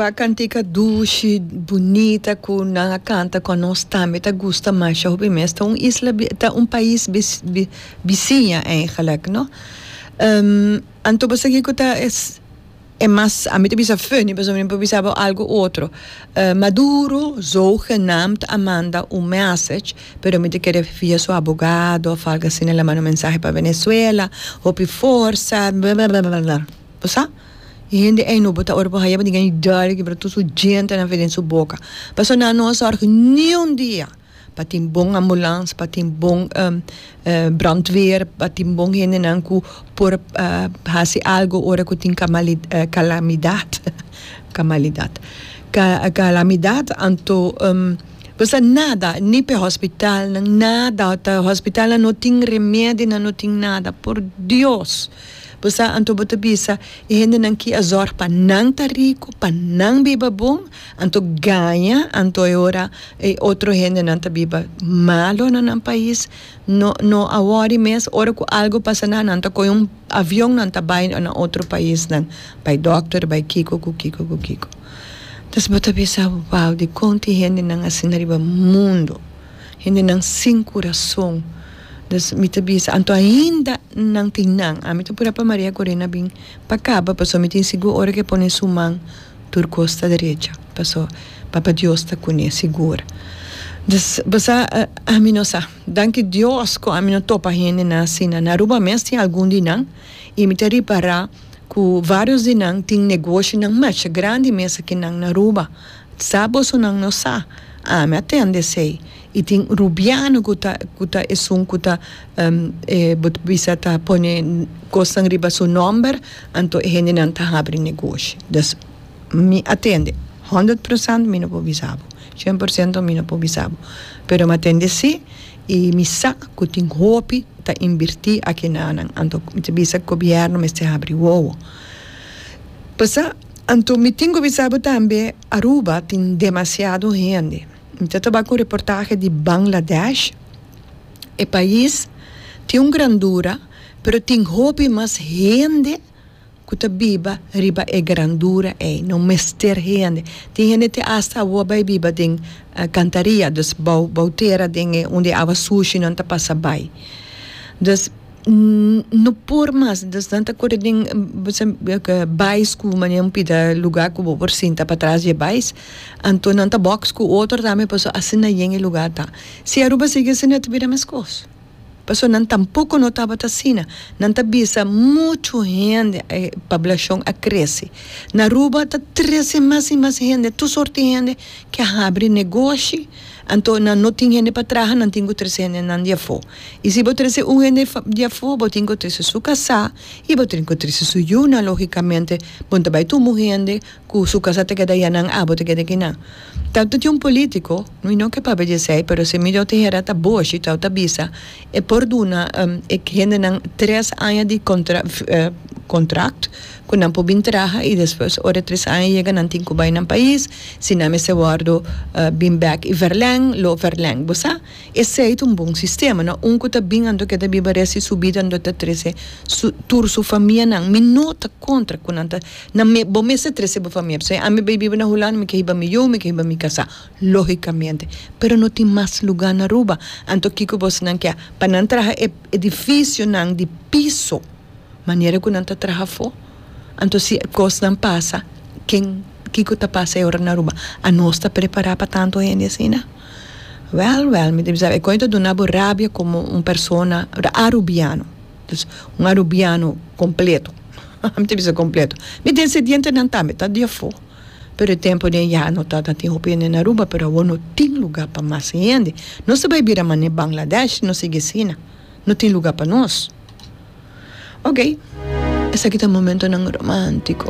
Cuba cantica dushi, bunita cu nan a canta con nos tambe ta gusta masha hopi mes. Ta un isla bi, ta un pais bi, bisiña eigenlijk no. Anto bo sigui cu ta e, e mas, ami ta bisa funny pasobra mi por bisa bo algo otro. Maduro zogenaamd a manda un message pero mi ta kere via su abogado of algo asina laman un mensahe pa Venezuela hopi forsa blablabla. Bo sa? E hende ei no bo ta ora por haya bo di guy dare kibra tur su djentenan fe den su boka. Pasobra nan a no a sòrg niun dia pa tin bon ambulans, pa tin bon brandweer, pa tin bon hendenan ku por hasi algu ora ku tin kamali kalamidat, kamalidat, ka kalamidat. Anto bo sa nada, ni p'e hòspitalnan, nada ta hòspitalnan no tin remedi, nan no tin nada. Por dios! Bo sa, anto bo ta bisa e hendenan ki a zòrg pa nan ta riku, pa nan biba bon, anto gaña, anto e ora e otro hendenan ta biba malu na nan pais. No, no a wòri mes, ora ku algu pasa nan, nan ta kohe un avion, nan ta bai na otro paisnan, bai dòkter, bai kiko ku kiko ku kiko. Entonces bo ta bisa, wou, dikon tin hendenan asina riba mundu? Hendenan sin kurason. Dus mi ta bisa, anto ainda nan tin nan. Ami ta pura pa Maria Corina bin pa kaba, paso mi tin sigur ora ku e pone su man, tur kos ta derecha, paso Papa Dios ta kuné sigur. Dus, bo sa, ami no sa. Danki Dios ku ami no topa hendenan asina. Na Aruba mes tin algun di nan, i mi ta ripará ku vários di nan tin negoshinan masha grandi mesa ke nan na Aruba. Sa boso nan no sa, ami a tende esey, y tin rubiano cu ta cu ta esun cu ta e bo ta bisa ta pone cosnan riba su nomber, anto e hendenan ta habri negoshi. Dus mi a tende, hundred procent mi no por bisa bo, cien por ciento mi no por bisa bo, pero mi a tende esi y mi sa cu tin hopi ta invirti aki nanan, anto mi ta bisa gobierno mester habri wowo. Pasa. Anto mi tin cu bisa bo tambe Aruba tin demasiado hende. Mi ta taba cu un reportahe di Bangladesh. E pais tin un grandura pero tin hopi mas hende cu ta biba riba e grandura ey. No mester hende. Tin hende te hasta awor bay biba den cantaria, dus bou tera den e unda e awa sushi nan ta pasa bay. Dus. no por mas ta kore den bai sku mane un pida luga ku bo por sinta pa tras di e bai anto nan ta box ku otro tambe paso asina yen e luga ta si Aruba sigui asina ta bira meskos paso nan tampoco no tabata asina nan ta bisa muchu hende e pablashon a krese na Aruba ta trese mas y mas hende tur sorti hende ke a habri negoshi. Anto nan no tin hende pa traha, nan tin ku trese hendenan di afó. I si bo trese un hende di afó, bo tin ku trese su kasá i bo tin ku trese su yunan. Lógikamente, bo no ta bai tumba un hende ku su kasá ta keda yanan abo ta keda aki nan. Tau ta tin un polítiko, mi no ke papia di esei, pero si mi dor ta hera ta Boshi, tau ta bisa e por duna e hendenan tres aña di kontrakt, ku nan por bin traha i despues ora e tres aña yega nan tin ku bai nan pais, si nan mester wòrdu bin bèk i vèrlèng, lo vèrlèng. Bo sa? Esei ta un bon sistema. No un ku ta bin anto ke ta biba rèst di su bida anto ta trese su tur su famianan. Mi no ta kontra ku nan ta nan me bo mester trese bo famia pasobra ami bai biba na Hulanda mi ke hiba mi yu, mi ke hiba mi kasá, lógikamente. Pero no tin mas lugá na Aruba. Anto kiko bosnan ke pa nan traha e edifisionan di piso? manera ku nan ta traha afó, anto si e kosnan pasa, ken, kiko ta pasa e ora nan Aruba? Anos ta prepará pa tantu hende asina? Wèl, wèl, mi ta bisa e koe ta duna bo rabia komo un persona arubiano, dus un arubiano kompleto, hahaha, mi ta bisa kompleto, mi desedientenan tambe ta di afó, pero e tempu de ya no ta, ta tin hopi hende na Aruba, pero awor no tin lugá pa mas hende, nos ta bai bira manera Bangladesh si nos sigui asina, no tin lugá pa nos. Oke, esaki ta momentonan romántico.